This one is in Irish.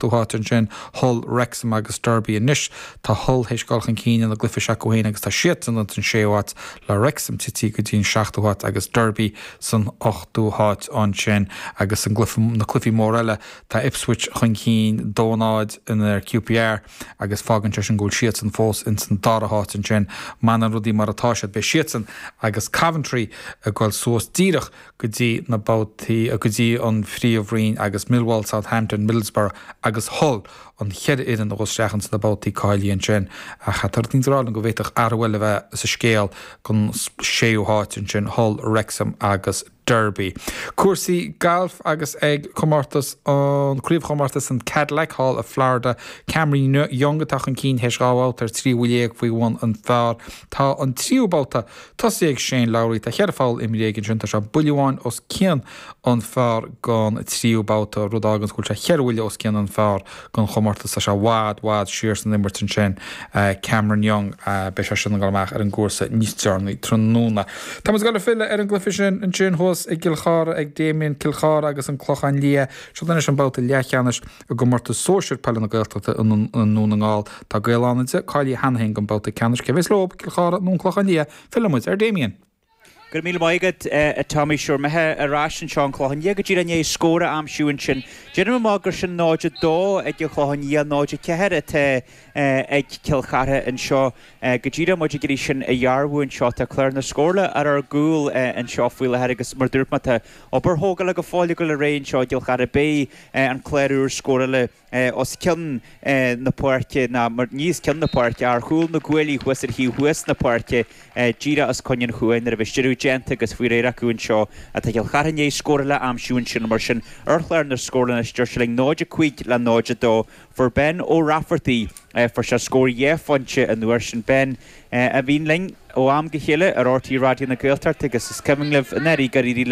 dtí an áit ansin, Hull, Wrexham agus Derby anois. Tá Hull théis dul chun cinn ina gcluife s'acu féin agus tá siadsan ins an séú háit, le Wrexham titithe go dtí an seachtú háit agus Derby san ochtú háit ansin. Agus i gcluife, na cluifí mór eile, tá Ipswich chun cinn, dó-náid in aghaidh QPR agus fágann sé sin go bhfuil siadsan fós ins an dara háit ansin. Má fhanann rudaí mar atá siad, beidh siadsan agus Coventry ag dul suas díreach, go dtí na babhtaí, go dtí an Phríomhroinn agus Millwall, Southampton, Middlesbrough agus Hull an cheithre fhoireann a ghabhfas isteach ins na babhtaí cáilithe ansin. Ach tá rud eicínt ag rá liom go bhféadfadh athrú eile a bheith sa scéal don séú háit ansin, Hull, Wrexham agus Derby. Cúrsaí gailf agus ag comórtas an, craobhchomórtas an Cadillac thall i Florida, Cameron Young atá chun cinn théis dhá bhabhta ar thrí bhuille dhéag faoi bhun an phar. Tá an tríú babhta tosaithe ag Shane Lowry, tá ceithre pholl imrithe aige ansin, tá sé buille amháin os cionn an phar gon tríú babhta, rud a fháganns go bhfuil sé cheithre bhuille os cionn an phar gon chomórtas, tá sé i bhfad, i bhfad siar san imirt ansin. Cameron Young, beidh sé sin ag dul amach ar an gcúrsa níos deireanaí tráthnóna. Tá muid ag dul ag filleadh ar an gcluiche sin anois thuas i gCill Chartha ag Damien, Cill Chartha agus an Clochán Liath. Seo anois an babhta leathcheannais. I gcomórtas sóisir peile na Gaeltachta i nDún na nGall, tá Gaeil Fhánada cáilithe cheana féin don bhabhta ceannais. Cé a bheas leo? Cill Chartha nó an Clochán Liath? Filleann muid ar Damien. Go raibh míle maith agat, tá muid ar meitheamh ar ais anseo an Clochán Liath go díreach i ndiaidh scór a aimsiú ansin. Déanaim amach gur sin 0-2 ag an Chlochán Liath, 0-4 atá ag Cill Chartha anseo go díreach, muid ag iarraidh sin a dhearbhú anseo. Tá clár na scórála ar ár gcúl anseo faoi láthair agus mar dúirt mé tá obair thógála go fóill acu faoi réir anseo i gCill Chartha. Beidh. an clár úr scórála os cionn na páirce, nó ní os cionn na páirce, ach ar chúl na gcuaillí thuas ar thaobh thuas na páirce, díreach os coinne an chúil, nuair a bheas deireadh déanta agus faoi réir acu anseo ach tá Cill Chartha i ndiaidh scór eile a aimsiú ansin mar sin ar chlár na scór anois de réir sílim 0-5 le 0-2. Fuair Ben Ó Raifeartaigh, fuair sé scór dhá phointe an uair sin. Ben, a bhíonn linn ó am go chéile ar RTÉ Raidió na Gaeltachta agus is cuimhin libh nár éirigh le.